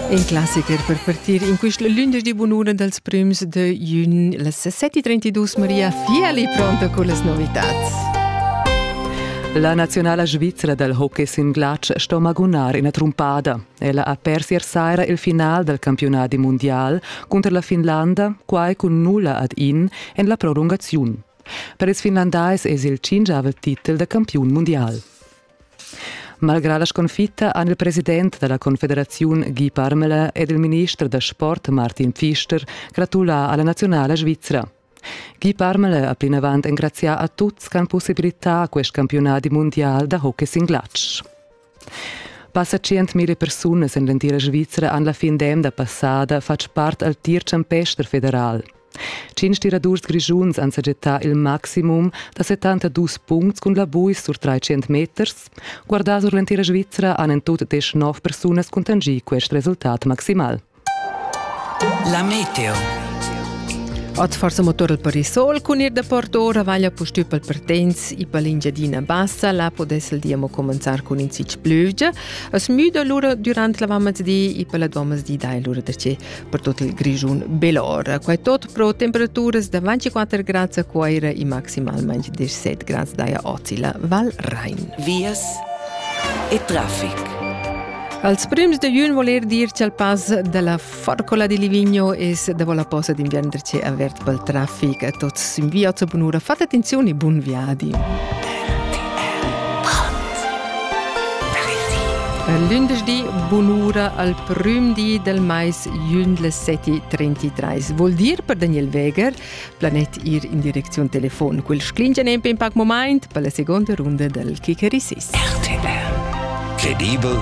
In classicher per partir in quist lündeschdi bunura dals prüms de jün las 7:32 Maria Fiali pronta con las novitats. La nazionala svizra dal hockey sin glatsch sto magunar ina trumpada. Ella ha pers ier saira il final dal campionadi mundial cunter la Finlanda, quai cun nulla ad in en la prolungaziun. Per ils finlandais es il cingiavel titel da campiun mundial. Malgrà la sconfitta han il president da la Confederaziun Guy Parmelin ed il minister da sport Martin Pfister gratulà a la naziunala svizra. Guy Parmelin ha plinavant engrazià a tuts ch'han possibilità quest campiunadi mundial da hockey sin glatsch. Passa 100.000 persunas en l'entira Svizra han la fin d'emna passada fatg part al tir champester federal. Tschintg tiradurs grischuns han sajettà il maximum da 72 puncts cun la buis sur 300 meters. Guardà sur l'entira Svizra han en tut desch nov persunas cuntanschì quest resultat maximal. La meteo. Oz forsa motor per il sol cun ir da port ora vaglia pustü pel Pertens e per l'Engiadina Bassa, là podess il dia mo comenzar cun in zic plüvgia. Es müda lura durant la vammas di e per la domas di dai lura da che. per tot il Grischun bela ora. Quai tot pro temperaturas da 24 grads a Coira e maximalmente 17 grads daia Ozila Val Rhein. Vias e traffic. Als prims de Jun voler dir che il pas della Forcola di Livigno es da vola posa d'inviern ce avert pel traffic a tots in via zur bunura. Fate attenzione e buon viadi. Per lündeschdi bunura al prüm di del mais jündle seti trentitreis, vuol dir per Daniel Weger, planet ir in direcziun telefon. Quel sclingia nempe in pac moment per la seconda runda del Kikerisis. RTR Credibel